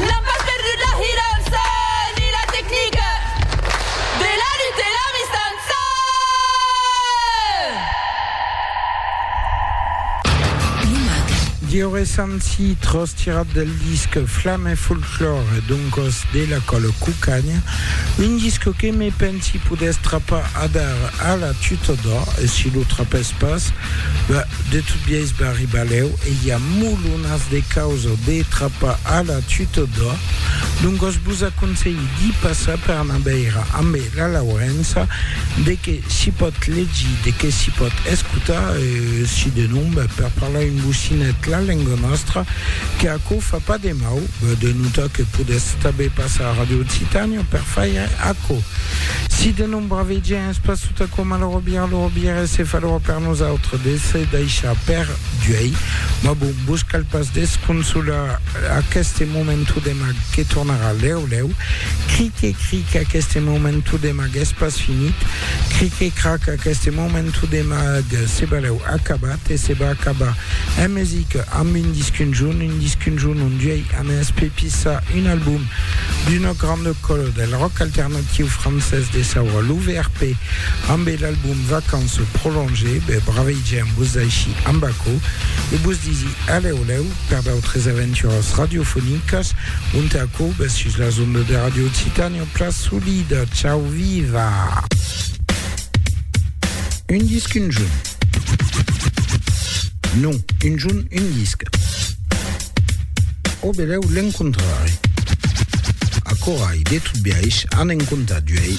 N'an pas perdut la hirança ni la tecnica de la lutte e la mistança! Plumac. Dioresanci tros tirat del disc Flam e folklore, doncos de la Còla Cucagna, un disc que me pensi podètz trapar adar a la Tutodò e si lo trapètz pas, ben, De tot biais barribalèu e i a molonas de causa de trapar a la tutòda, doncas vos aconselhi d'i passar per anar veire ambe la Laurença de qué s'i pòt legir, de qué s'i pòt escotar e si de non, ben, per parlar un bocinet la lenga nòstra, que aquò fa pas de mau, ben, de notar que podètz tanben passar a Radio Occitània per faire aquò. Si de non bravejar, Es pas tot aquò malaurat bien, lo bien es se falhora per nosautres de se daishar per Duei, mas bon, vos cal pas desconsolar aqueste momentu de mag que tornarà lèu lèu, cric e cric aqueste momentu de mag es pas finit, cric e crac aqueste momentu de mag se balèu acabat e se va acabar en musica amb un disc un jorn, un disc un jorn on Duei a mès pepissar un album. D'una granda còla del ròck alternatiu francés de saura lo VRP ambe l'album Vacances prolongées, be braveigèm vos d'aisí amb aquò e vos disi alèu lèu per d'autres aventuras radiofonicas ont aquò bes sus las ondas de Radio Occitània Plas Solida. Chau viva! Un disc un junh? Non, un junh un disc. O belèu l'encontrarè. Aquò ai de tot biais an en comptat uèi.